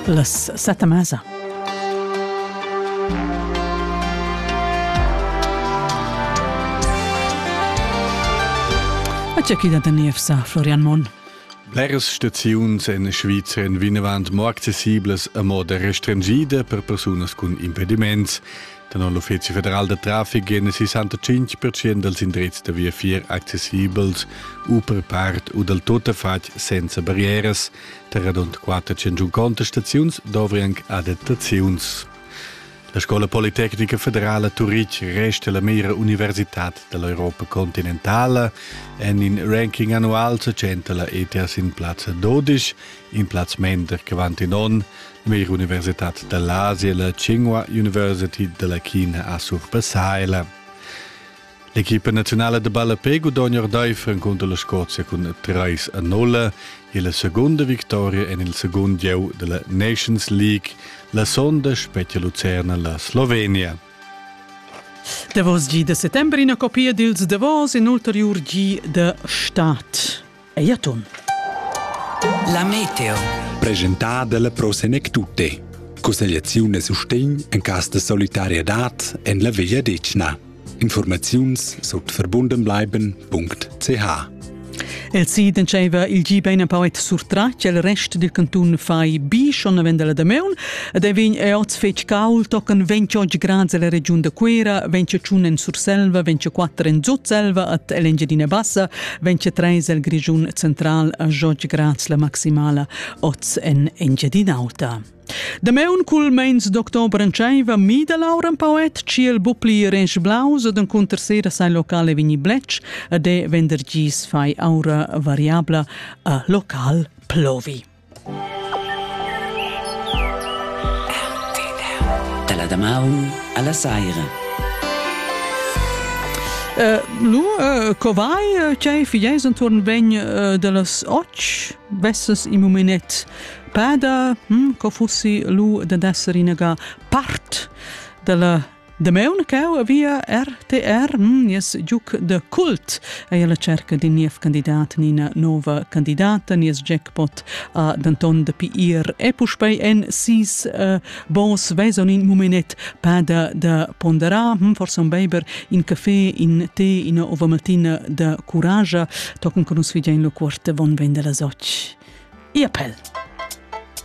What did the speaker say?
Las sette mesa. C'è chi da Niefsa, Florian Monn. Bleras staziuns en Svizra vinavant mo accessiblas a moda restringida per persunas cun impediments Tenor l'Uffizi federal da traffic èn 65 percent dals indrizs da viafier accessibels u per part u dal tuttafatg senza barrieras. Tar radund 400 contestaziuns dovri anc adattaziuns. La Scola Politecnica Federala Turitg resta la mira universitad dall'Europa continentala. En in ranking annual se centa la ETS in plaz 12, in plaz mender che vant in onn. Veir Universitad da l'Asia la Tschingua University de la China a surpassaila. L'equipa nazionale de ballapé gudogna Ordeif en conto la Scozia cun 3 a 0 e la seconda victoria en il second gieu de la Nations League la sonda spettia Lucerna la Slovenia. Davos gi de settembre ina copia dils davos in ulteriur gi de Stadt. Ei atun. La meteo. Presentada dalla Pro Senec Tutte. Cussegliaziun e sustegn en cas de solidarietad en la Veglia Decna. Informaziuns sut verbundenbleiben.ch El si diceva il gi bein empauet surtra che il rest dil cantun fai bi schon avenda la Dameun ed ei vegn e oz fetg cauld tocan ventg oggi grads alla regiun da Cuera, ventg tschun en Surselva, ventg quatter en Zutselva et Engiadina Bassa, vegn treis el Grischun central a George Graz la maximala oz en Engiadin'Auta. Dameun cul meins d'october entscheiva mida Laura un poet ciel bupli rensch blaus ad encunter sera sai locale vini blec a de venderdgis fai aura variabla a local plovi. Dalla damaun alla saira. Eh, nu, eh, co vai? Tgei figeis entuorn vegn eh, dallas och? Vesses im mumenet pada? Hm, co fussi lu dad esser inaga part dalla Damaun cau via RTR nies giuc de cult ei alla cerca d'in niev candidat ni ina nova candidata nies jackpot ha denton dapi ir e puspei en sis uh, bons veson in mumenet pada da ponderar hm, forse un beiber in caffè in tè ina ova mattina da courage tochen con nus videin lo quart von vende la soc. Ia pel!